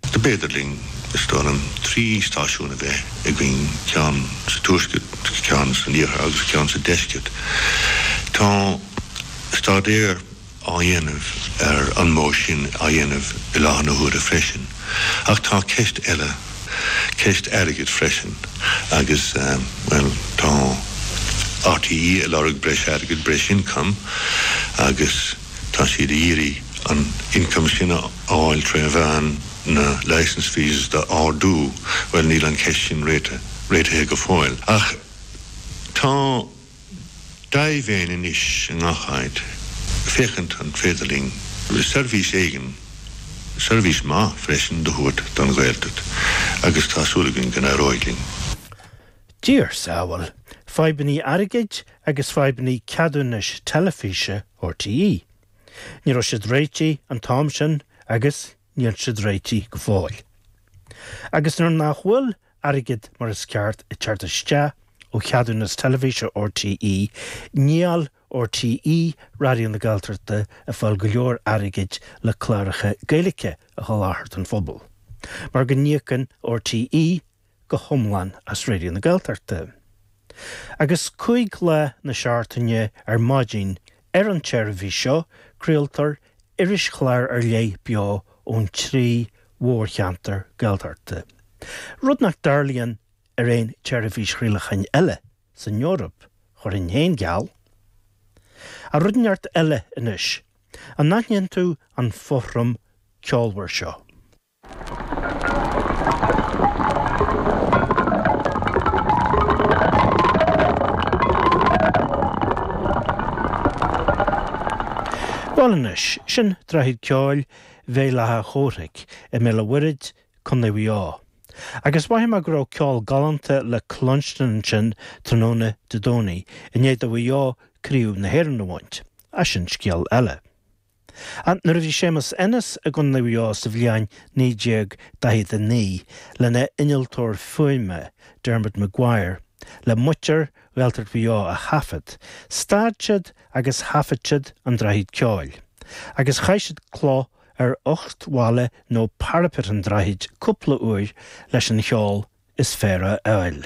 Is féidir linn, is dóigh liom, trí stáisiún a bheith againn, ceann sa tuaisceart, ceann san iarthar agus ceann sa deisceart. Tá staidéar á dhéanamh ar an modh sin á dhéanamh i láthair na huaire freisin, ach tá ceist eile, ceist airgid freisin agus, bhuel, tá RTÉ ag lorg breis airgid, breis ioncaim agus, Tá siad ag iarraidh an ioncam sin a fháil tré mheán na licence fees do ardú. Bhuel níl an cheist sin réitithe go fóill. Ach tá dea-mhéin anois i ngach áit féachaint an féidir linn seirbhís éigin, seirbhís maith freisin, do thabhairt don Ghaeltacht agus tá súil againn go n-éireoidh linn. Diarsa amhail, fadhbannaí airgid agus fadhbannaí ceadúnais teilifíse. RTÉ. Ní raibh siad réitithe an t-am sin agus níl siad réitithe go fóill. Agus nuair nach bhfuil airgead mar is ceart ag teacht isteach ó cheadúnas teilifíse RTÉ, níl RTÉ Raidió na Gaeltachta ag fáil go leor airgid le cláracha Gaeilge a sholáthar don phobal, mar go n-íocann RTÉ go hiomlán as Raidió na Gaeltachta. Agus cúig lá na seachtaine ar maidin ar an tseirbhís seo craoltar irischlár ar leith beo ón trí mhórcheantar Gaeltachta, rud nach dtarlaíonn ar aon tseirbhís chraolacháin eile san Eoraip, chuirfinn féin geall. Á, rud ineacht eile anois, an n-aithníonn tú an fothram ceolmhar seo? Bhuel anois, sin Droichead Ceoil Bhéal Átha Chomhraic i mBéal a' Mhuirthid, Condae Mhuigh Eo. Agus maífidh mé go raibh ceol galánta le cluinstin ansin tráthnóna Dé Domhnaigh i ndiaidh do Mhuigh Eo craobh na hÉireann a bhaint, ach sin scéal eile. Ach nuair a bhí Séamus Ennis i gCo Mhuigh Eo sa bhliain 1949 lena innealtóir fuaime Dermot Maguire le muintir Ghaeltacht Mhaigh Eo a thaifead, stad siad agus thaifead siad An Droichead Ceoil agus chaith siad cloch ar uchtbhalla nó parapet an droichid cúpla uair leis an cheol is fearr a fháil.